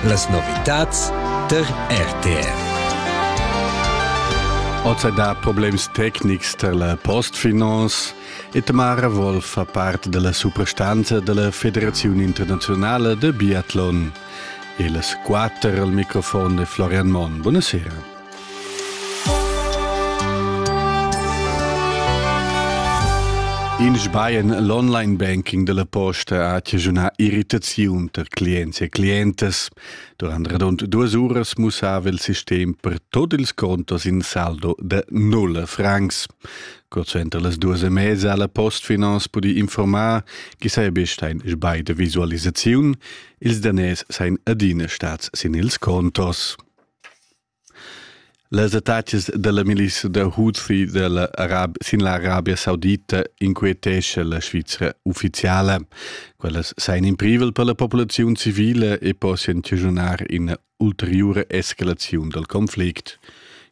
Las novitads der RTR. Oz da problems tecnics per la postfinance e Tamara Wolf fa parte della suprastanza della Federazione Internazionale de Biathlon. E las quatter al microfon de Florian Monn. Buonasera. In sbaien l'online banking della posta ha chigiunà irritaziun tar clients e clientas. Durant radund duas uras mussava il sistem per tot ils contos in saldo de nulla francs. Curt suenter las duas e mezza ha la Postfinance pudi informar chi saja ein sbai de visualisaziun. Ils daners seien adina stats sin ils contos. Las attacas dalla milissa da Houthi dalla Arabia, sin l'Arabia Saudita inquietescha la Svizra ufficiala. Quellas sain in privel per la populaziun civile e possian chaschunar ina ulteriura escalaziun dal conflict.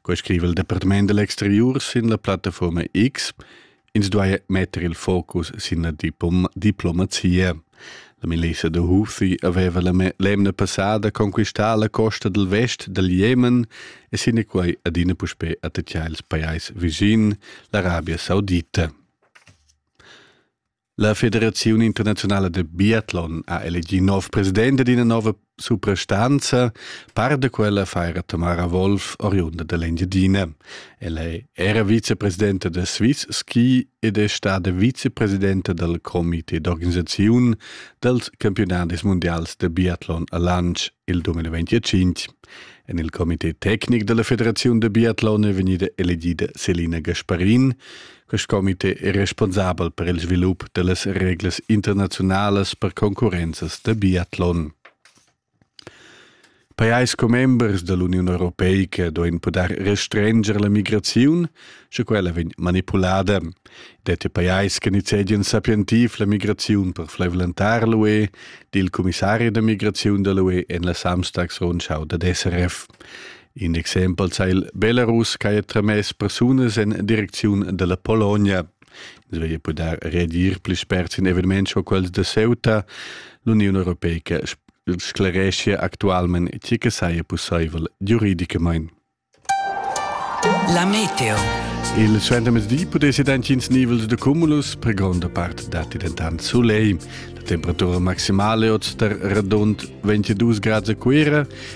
Quei scriva il Departament dell'exterior sin la plattaforma X. Ins duai metter il focus sin la diplom diplomazia. La milissa da Houthi aveva l'emna passada conquistà la costa dal vest dal Jemen e sinaquai adina puspè attacchà ils pajais vicin, l'Arabia Saudita. La Federazione Internazionale del Biathlon ha elegì nov president d'ina nova suprastanza, par da quella faira Tamara Wolf oriunda dell'Engiadina. Ella è era vicepresidente del Swiss Ski ed è stata vicepresidente del comité d'organisazione dels campionadis mondials de biathlon a Lanz il 2025. En il comité tecnic della Federazione de Biathlon è vegnida elegida Selina Gasparin, Quest comité è responsabel per il svilup da las reglas internaziunalas per concurrenzas da biatlon. Pajais commembers da l'Uniun Europeica duain pudair restrenger la migraziun, sche quella vegn manipulada. Det è pajais che nizzedian sapientiv la migraziun per flaivlentar l'UE, dil commissari da migraziun da l'UE en la Samstagsrundschau dad SRF. In exempel sai il Belarus che ha tramess persunas en direcziun della Polonia. Ins veglia poder redir pli spert in eveniments co quels de Ceuta. L'Union Europeica sclaresce actualment tgi che saja possibel giuridicamente. La meteo. Il suentermezdi pudesse dantins nivels de cumulus, per gronda part datti dentant soleil. La temperatura maximale oz tar radund 22 grad a Cuira,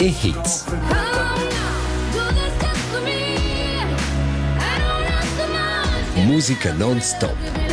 e Hits. Musica non stop.